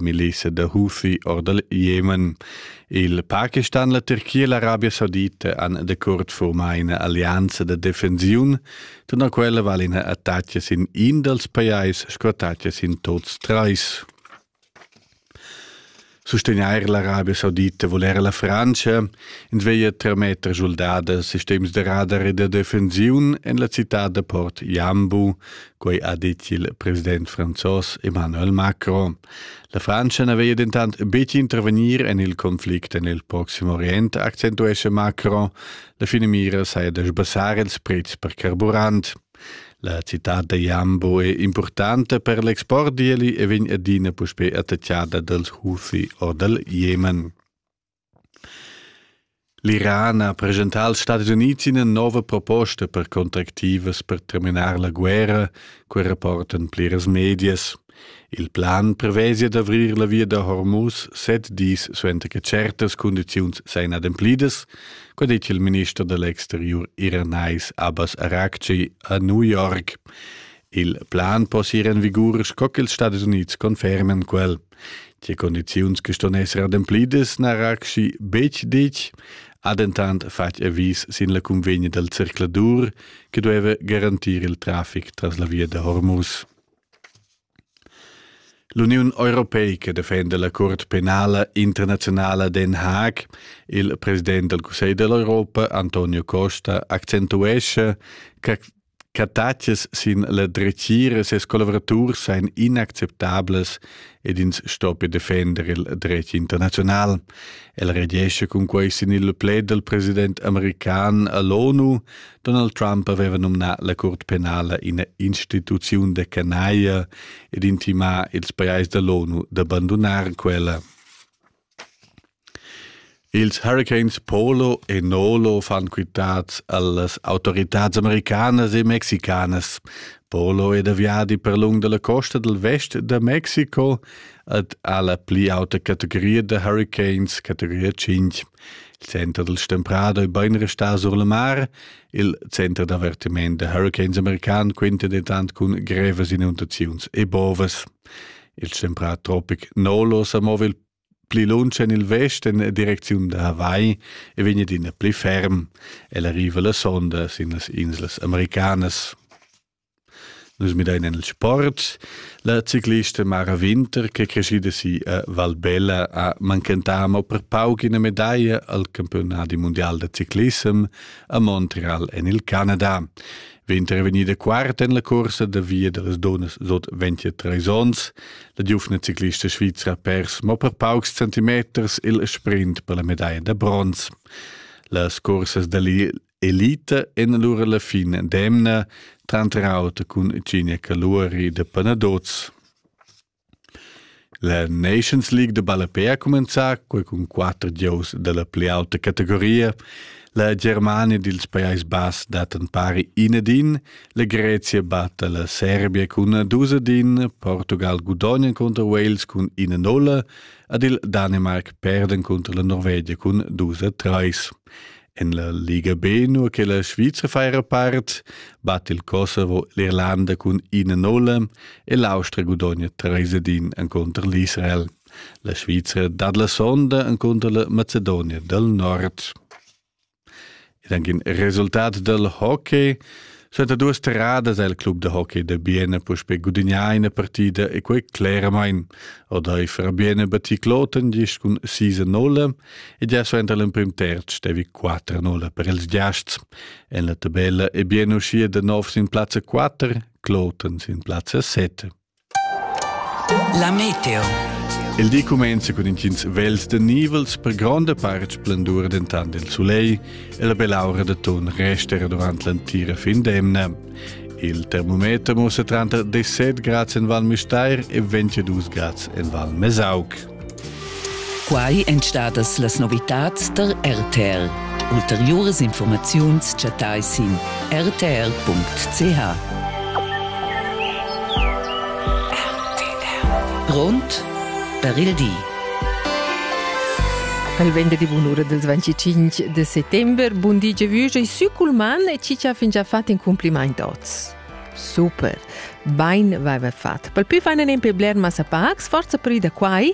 milisa da Hufi or dal Jemen. Il Pakistan e la Turchia e l'Arabia Saudita han decurt formà ina allianza da defensiun, tuna quella vale ina attacca sin in dals pajais sco attacca sin tots trais. Sostegnair l'Arabia Saudita vuol era la Francia, in sveia tremeter soldada sistems de radar e de defensiun en la città de Port Jambu, quei ha dit il president franzos Emmanuel Macron. La Frantscha ne veglia dentant betg intervenir en il conflict en il Proxim Orient, accentuesce Macron. La fine mira saja da sbassare ils prezs per carburant. La città da Jambo è importante per l'export, di e vegn adina puspè attacchada dals Houthi o dal Jemen. L'Iran ha preschentà als Stadis Unids ina nova proposta per contractivas per terminar la guerra, quai rapportan pliras medias. Il plan previsia d'avrir la via da Hormuz set dis suenter che certas cundiziuns sajan ademplidas, quai dettia il minister da l'exteriur iranais Abbas Araghchi a New York. Il plan possia ir en vigur sco ch'ils Stadis Unids conferman quel. Die condiziuns che ston esser ademplidas na raxi betg ditg, ha dentant fatg avis sin la convegna dal circladur che dueva garantir il traffic tras la via da Hormuz. L'Uniun europeica defenda la Curt penala internazionala Den Haag. Il president del Cussegl dell'Europa, Antonio Costa, accentuesce che Cattatschas sin la dretgira e ses collavuraturs ein inacceptablas ed ins sto per defender il dretg internazional. El regescha cun quei sin il plaid dal president american all'ONU. Donald Trump aveva nominà la Curt penala ina instituziun da canaia ed intimà ils pajais dall'ONU da bandunar quella. Ils huricans Polo e Nolo fan quitads allas autoritads americanas e mexicanas. Polo è da viadi per lung dalla costa dal vest da Mexico ed ha la pli auta categoria da huricans, categoria 5. Il center del Stemprado è ben restà sur la mar. Il center d'avertiment da huricans american quinta dentant cun grevas inundaziuns e bovas. Il stemprà tropic Nolo sa mova il pli lunsch en il vesten e direcziun da Hawaii e vegn adina pli ferm. El arriva la sonda sin las inslas americanas. Nus midain en il sport. La ciclista Mara Winter, che è crescida si a Valbella, ha manchentà mo per pauc ina medaglia al campiunat mondial da ciclissem a Montreal en il Canada. Winter è vegnida quarta en la cursa da via da las dunnas sut 23 onns. La giuvna ciclista svizra pers mo per paucs centimeters il sprint per la medaia da bronz. Las cursas dell'elite en allura la fin d'emna, tranter auter cun Ginia Caluri de Panadoz. La Nations League de Ballapè ha comenzà cun quatter giows dalla pli auta categoria. La Germania dils Pajais Bass dat an pari inedin, La Grezia batta la Serbia cun 2-1, Portugal gudogna contro Wales cun 1-0 ed il Danimarc perden contro la Norvegia cun 2-3. En la Liga B, nur che la Sviza faira part, batte il Kosovo l'Irlanda cun 1-0 e l'Austria gudogna 3-1 en contro l'Israel. La Sviza dat la sonda en contro la Macedonia del Nord. Ed anche il resultat del hockey Senta duas terradas el club de hockey de Biene puspe gudignà ina partida e quei cleramain. Odeifer Biene batti Kloten gist cun 6-0 e già suenter l'emprim terz stevi 4-0 per ils giasts. En la tabella è Biene uscì de nov sin plazza 4, Kloten sin plazza 7. La meteo. Il di cumenza cun intgins vels de nivels per gronda part splendur dentant il sulegl e la belaura de ton rester durant l'entira fin d'emna. Il termometer mussa tranter 17 grads en Val Müstair e 22 grads en Val Mesauc. Quai èn stadas las novitads tar RTL. Ulteriuras informaziuns chattai sin rtr.ch. Grond per il di. Al vende di bunura del 25 de settembre, bundige Vüge e Sükulman e Cicia fingia fat in compliment oz. Super! Bain vaiva fat. Pel pü fainen en pe bler massa pacs, forza pri da quai,